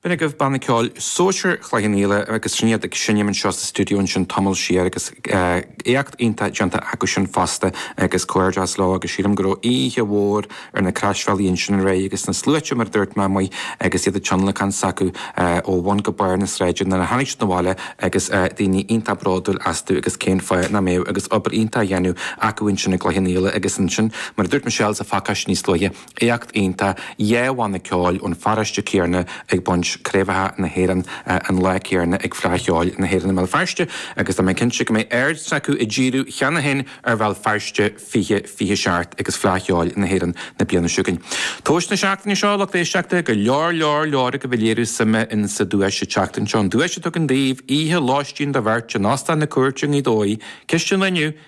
Sin agaibh banna ceoil Sóisir Chloich an Fhaola agus sin iad ag seinm anseo sa stiúideo ansin tamall siar agus éacht iontach déanta acu sin fosta agus comhghairdeas leo agus sílim go raibh oíche mhór ar na Croisbhealaí ansin aréir agus na sluaite mar a dúirt mé amuigh agus iad ag tionlacan s'acu ó bhun go barr na sráide nuair a tháinig siad abhaile agus daoine iontach bródúil astu agus cén fáth nach mbeadh agus obair iontach á dhéanamh acu ansin i gCloich an Fhaola agus ansin mar a dúirt Michelle sa phacáiste níos luaithe Éacht iontach dhá bhanna ceoil ón pharóiste céarna ag baint craobhacha na hÉireann an lá céarna ag Fleadh Cheoil na hÉireann i mBéal Feirste agus tá mé cinnte go mbeidh aird s'acu á díriú cheana féin ar Bhéal Feirste 2027 agus Fleadh Cheoil na hÉireann na bliana seo chugainn. Tomhas na seachtaine seo, lucht éisteachta, go leor leor leor agaibh ag léiriú suime insa duais an tseachtain seo, an duais a tugann daoibh oíche lóistín do bheirt in Óstán na Cúirte i nGaoth Dobhair, ceisteanna an lae inniu,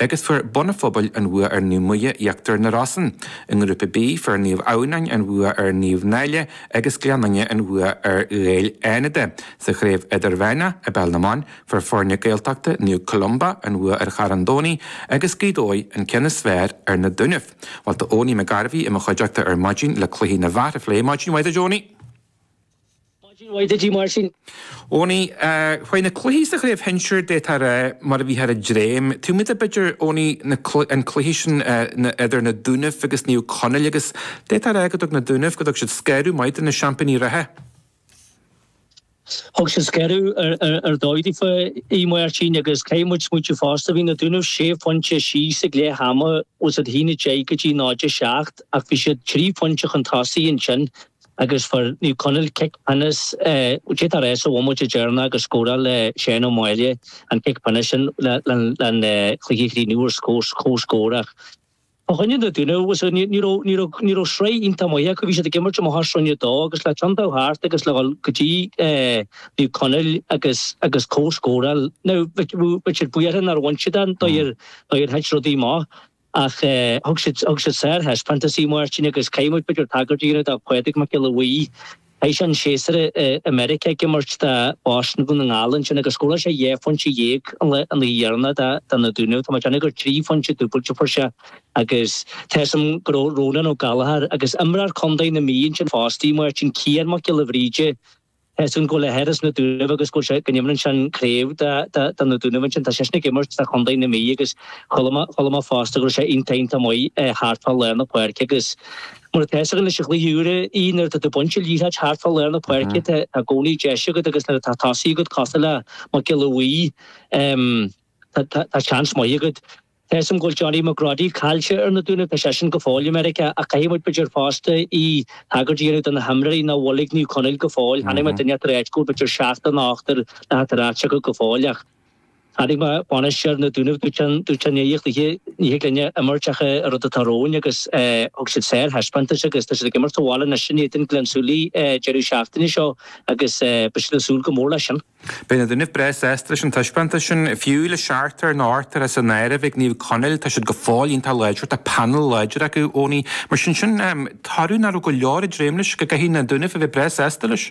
agus fuair Bun an Phobail an bhua ar Naomh Muire Íochtar na Rosann, i ngrúpa B, fuair Naomh Adhamhnáin an bhua ar Naomh Náille agus Gleann Fhinne an bhua ar Ghaeil Fhánada sa Chraobh Idirmheánach i bPeil na mBan, fuair foirne Gaeltachta Naomh Columba an bhua ar Charn Domhnaigh agus Gaoth Dobhair an ceann is fearr ar na Dúnaibh. Bhuel, tá Eoiní McGarvey i mo chuideachta ar maidin le cluichí na bhfear a phlé. Maidin mhaith duit a Eoiní! Eoiní, chuaigh na cluichí sa chraobh shinsir d'fhéadfá a rá mar a bhíthear ag dréim. Tosóidh muid b'fhéidir Eoiní na cl an cluichí sin na idir na Dúnaibh agus Naomh Conaill agus d'fhéadfá a rá go dtug na Dúnaibh go dtug siad scanradh maith do na seaimpíní reatha. Thug siad scanradh ar ar ar dóigh daofa a Aodh Máirtín agus caithfidh muid smaoitiú fosta. Bhí na Dúnaibh sé phointe thíos ag leith ama a haon a deich go dtí náid a seacht ach bhí siad trí phointe chun tosaigh ansin agus fuair Naomh Conaill cic pionais, beagnach sa bhomaite dheireanach agus scóráil Shane O'Malley an cic pionais sin leis an chluiche a chríochnú ar chomhscór ach. Fá choinne na Dúnaibh, ní raibh sraith iontach maith acu, bhí siad ag imirt i mbliana sa Roinn a 2 agus le cionn dul thart agus le dhul go dtí Naomh Conaill agus agus comhscóráil, nó bhí siad buíoch nár bhain siad ann, mar a thit rudaí amach. Ach thug siad sárthaispeántas a Aodh Máirtín agus caithfidh muid b'fhéidir tagairt a dhéanamh do Phádraig Mac Giolla Bhuí. Chaith sé an séasúr i Meiriceá ag imirt do Bhoston i nDún na nGall ansin agus scóráil sé dhá phointe dhéag an lá dheireanach do na Dúnaibh. Tá mé déanamh gur trí phointe dúbailte a fuair sé agus tá 'fhios agam go raibh Rónán Ó Gallachóir, agus imreoir contae na Mí ansin fosta, a Aodh Máirtín, Cian Mac Giolla Bhríde, Tá 'fhios againn gurb é a athair as na Dúnaibh agus go go n-imríonn sé sa chraobh do na Dúnaibh ansin. Tá seisean ag imirt do Chondae na Mí agus chuala mé fosta go raibh sé iontach iontach maith thart fá lár na páirce agus mar atá fhios againn leis na rialacha úra nuair atá tú ag baint an liathróid thart fá lár na páirce tá i gcónaí deis agat agus nuair atá tosaí agat cosúil le Mac Giolla Bhuí tá seans maith agat. Tá's agam go bhfuil Johnny McGroddy caillte ar na Dúnaibh. Tá seisean go fóill i Meiriceá ach caithfidh muid, b'fhéidir, fosta, tagairt a dhéanamh do na himreoirí nach bhfuil ag Naomh Conaill go fóill. Tháinig mé duine eatarthu áit go bhfuil, b'fhéidir, seachtar ná ochtar nach atá ar ais acu go fóill ach chonaic mé bainisteoir na nDúnaibh dúirt an dúirt an oíche oíche ní thig linne imirt ach an rud atá romhainn agus thug siad sárthaispeántas agus tá siad ag imirt sa bhaile anois in éadan Ghleann tSúilí deireadh seachtaine seo agus beidh siad ag súil go mór leis sin. Beidh na Dúnaibh breá sásta leis an taispeántas sin, fiú le seachtar nó ochtar as an áireamh, ag Naomh Conaill, tá siad go fóill iontach láidir, tá panel láidir acu, Eoiní, mar sin sin, toradh nach raibh go leor ag dréim leis go gcaithfidh na Dúnaibh a bheith breá sásta leis.